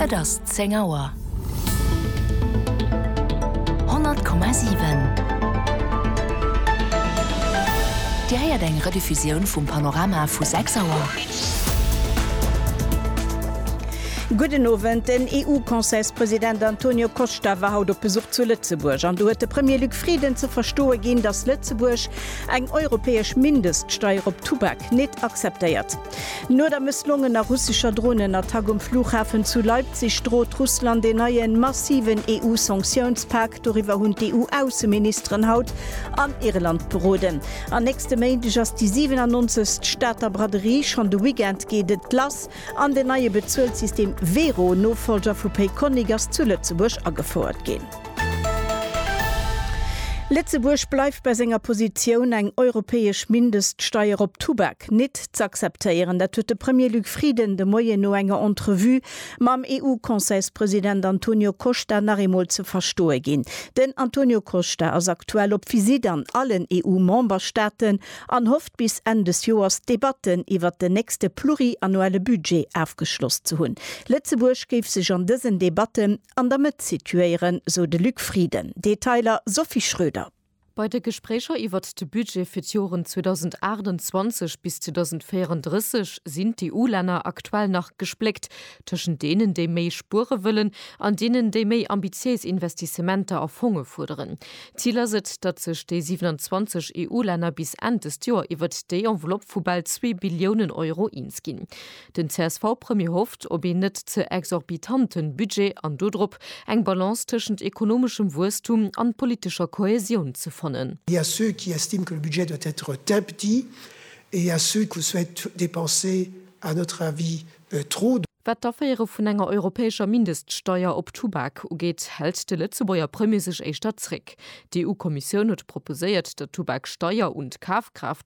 Et ass zéng Auer. 100,7 Dir héiert eng Rediffusioun vum Panorama vu 6 Auer. Gudden Owend. Den EU-Conseilspresident Antonio Costa war haut op Besuch zu Lëtzebuerg an do huet de Premier Luc Frieden ze verstoe ginn, datt Lëtzebuerg eng europäesch Mindeststeier op Tubak nit akzeptéiert. No der mësslongener russescher Dronenattack um Flughafen zu Leipzig drot Russland een neien, massiven EU-Sanktiounspak. Doriwwer hunn d'EU-Ausseministeren haut an Irland beroden. An nächste Méindeg ass déi 97. Stater Braderie. Schonn de Weekend geet et lass an den neie Bezuelssystem Wero, Nofollger vu Payconiq, ass zu Lëtzebuerg agefouert ginn. Lëtzebuerg bleift bei senger Positioun, eng europäesch Mindeststeier op Tubak. Verträg nit z'akzeptéieren. Dat huet de Premier Luc Frieden de Moien no enger Entrevue mam EU-Conseilspresident Antonio Costa nach eemol ze verstoe ginn. Den Antonio Costa ass aktuell op Visitt an allen EU-Memberstaaten an hofft bis Enn des Joers d'Debatten iwwert den nächste pluriannuelle Budget afgeschloss ze hunn. Lëtzebuerg géif sech an dësen Debatten an der Mëtt situéieren, sou de Luc Frieden. Detailer Sophie Schröder. Bei de Gespréicher iwwert de Budget fir d'Joren 2028 bis 2034 sinn d'EU-Länner aktuell nach gespléckt tëschent deenen, déi méi spuere wëllen, an deenen, déi méi ambitiéis Investissementer a Fonge fuerderen. Zil ass et, datt sech déi 27 EU-Länner bis Enn dëst Joer iwwert déi Enveloppe vu bal zwee Billiounen Euro eens ginn. Den CSV-Premier hofft op een net ze exorbitante Budget an dodrop, eng Balance tëschent ekonomeschem Wuesstum an politescher Kohäsioun ze fannen. Il y a ceux qui estiment que le budget doit être très petit et il y a ceux qui souhaitent dépenser, à notre avis, trop. Wat d'Aféiere vun enger europäescher Mindeststeuer op Tubak ugeet, hält de Lëtzebuerger Premier sech éischter zréck. D'EU-Kommissioun huet proposéiert, der Tubaksteuer un d'Kafkraaft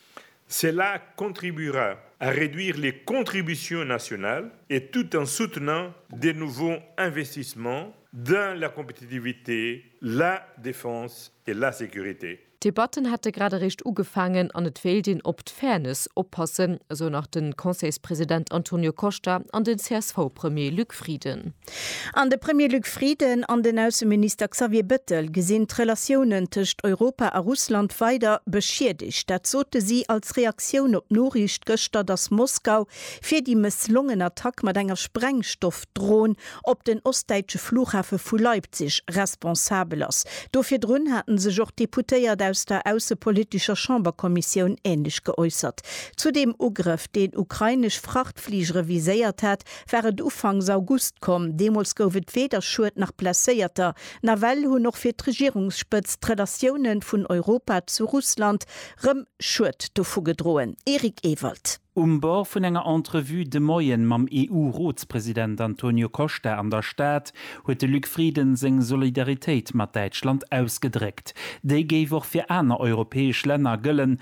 Cela contribuera à réduire les contributions nationales et tout en soutenant des nouveaux investissements dans la compétitivité, la défense et la sécurité. D'Debatten hätte grad eréischt ugefaangen an et wéilt een op d'Fairness oppassen, esou nach de Conseilspresident Antonio Costa an den CSV-Premier Luc Frieden. An de Premier Luc Frieden an den Ausseminister Xavier Bettel gesinn d'Relatiounen tëscht Europa a Russland weider beschiedegt. Dat sote si als Reaktioun op d'Noriicht gëschter, datt Moskau fir déi mësslongen Attack mat enger Sprengstoffdron op den ostdäitsche Flughafe vu Leipzig responsabel ass. Do virdrun hate sech och d'Deputéiert aus der aussepolitescher Chamberkommissioun änlech geäussert. Zu deem Ugrëff, deen ukrainesch Frachtfligere viséiert hat, war et Ufanks August komm. Deemools gouf et weder Schued nach Blesséierter. Nawell hunn och fir d'Regierungsspëtzt d'Relatioune vun Europa zu Russland rëm Schued dovu gedroen. Eric Ewald. Um Bord vun enger Entrevue de Moien mam EU-Rotspresident Antonio Costa an der Stad huet de Luc Frieden seng Solidaritéit mat Däitschland ausgedréckt. Déi géif och fir aner europäesch Länner gëllen,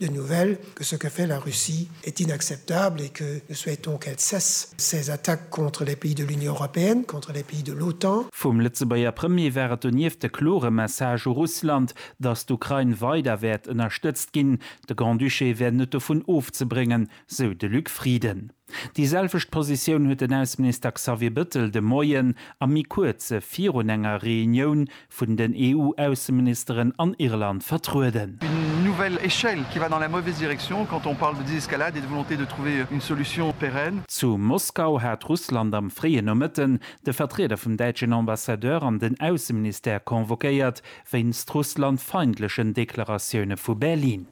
Les nouvelles que ce que fait la Russie est inacceptable et que nous souhaitons qu'elle cesse ses attaques contre les pays de l'Union européenne, contre les pays de l'OTAN. Vum Lëtzebuerger Premier war et donieft de klore Message u Russland, datt d'Ukrain weider wäert ënnerstëtzt ginn. De Grand-Duché wär net dovun ofzebréngen, sou de Luc Frieden. Déi selwecht Positioun huet den Ausseminister Xavier Bëttel de Moien a méi kuerze virun enger Reunioun vun den EU-Ausseministeren an Irland vertrueden. Une nouvelle échelle qui va dans la mauvaise direction quand on parle de désescalade et de volonté de trouver une solution pérenne. Zu Moskau hat Russland am fréien Nomëtten de Vertrieder vum däitschen Ambassadeur an den Ausseministère convoquéiert, wéinst russlandfeindlechen Deklaratioune vu Berlin.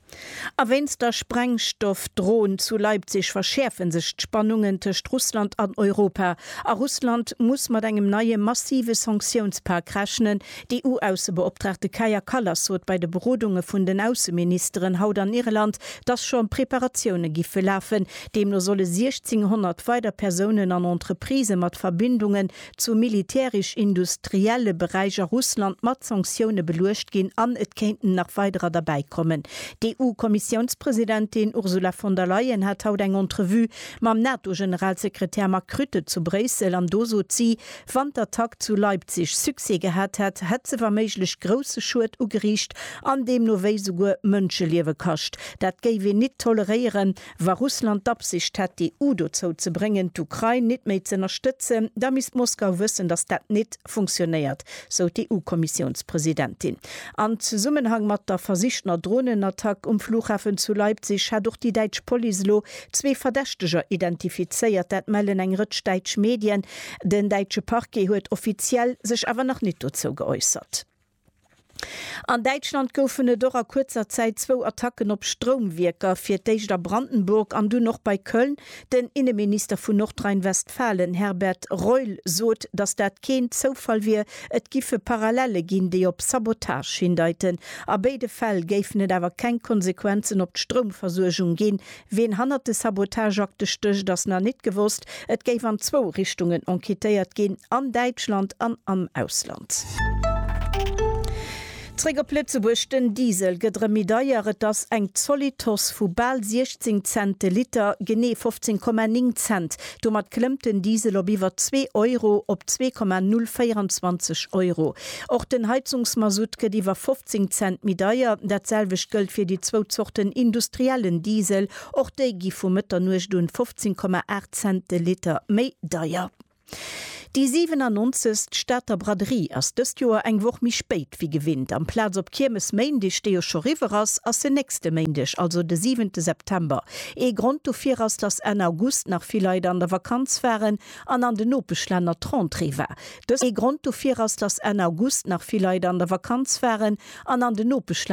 A wéinst der Sprengstoffdrohn zu Leipzig verschäerfe sech d'Spannungen tëscht Russland an Europa, a Russland muss mat engem neie massive Sanktiounspak rechnen. D'EU-Aussebeoptraagte Kaja Kallas sot bei de Berodunge vun den Ausseministeren haut an Irland, datt scho Preparatioune giffe lafen. Deemno solle 1.600 weider Persounen an Entreprisë mat Verbindunge zum militärisch-industrielle Beräich a Russland mat Sanktioune beluecht ginn an et kéinten nach weiderer derbäi kommen. D'EU-Kommissiounspresidentin Ursula von der Leyen hat haut eng Entrevue mam NATO-Generalsekretär Mark Rutte zu Bréissel an do sot si, wann d'Attack zu Leipzig Succès gehat hätt, hätt se wa méiglech grousse Schued ugeriicht an deemno wéi souguer Mënscheliewe kascht. Dat géif een nit toleréieren. Wa Russland d'Absicht hätt, d'EU dozou ze bréngen, d'Ukrain nit méi z'ënnerstëtzen, da misst Moskau wëssen, datt dat nit funktionéiert, sou d'EU-Kommissiounspresidentin. An Zesummenhang mat der versichtener Dronenattack um Flughafen zu Leipzig hätt och déi däitsch Police elo zwee Verdächteger identifizéiert. Dat mellen eng Rëtsch däitsch Medien. Den däitsche Parquet huet offiziell sech awer nach nit dozou geäussert. An Däitschland goufen et och a kuerzer Zäit zwou Attacken op Stroumwierker, fir d'éischt a Brandenburg an dunn och bei Köln. Den Inneminister vun Nordrhein-Westfalen Herbert Reul sot, datt dat keen Zoufall wier. Et giffe Parallelle ginn, déi op Sabotage hindeiten. A béide Fäll géifen et awer keng Konsequenzen op d'Stroumversuergung ginn, Ween hannert de Sabotageakte stécht ass nach nit gewosst. Et géif an zwou Richtungen enquêtéiert ginn, an Däitschland an am Ausland. Zréck op Lëtzebuerg, Den Diesel gëtt erëm méi deier, et ass eng zolidd Hausse vu bal 16 Cent de Liter, genee 15,9 Cent Domat klëmmt den Diesel op iwwer zwee Euro, op 2,024 Euro. Och den Heizungsmasutt gëtt iwwer 15 Cent méi deier. Dat selwecht gëllt fir déi zwou Zorten industriellen Diesel. Och déi gi vu Mëtternuecht un 15,8 Cent de Liter méi deier. Déi 97. Stater Braderie ass dëst Joer eng Woch méi spéit wéi gewinnt. Amplaz op Kiermesméindeg, dee jo scho riwwer ass, ass se nächste Méindeg, also de 7. September. Ee Grond dofir ass, dass Enn August nach vill Leit an der Vakanz waren an an den Nopeschlänner d'Rentrée war. Dëst ee Grond dofir ass, dass Enn August nach vill Leit an der Vakanz waren an an den Nopeschlänner.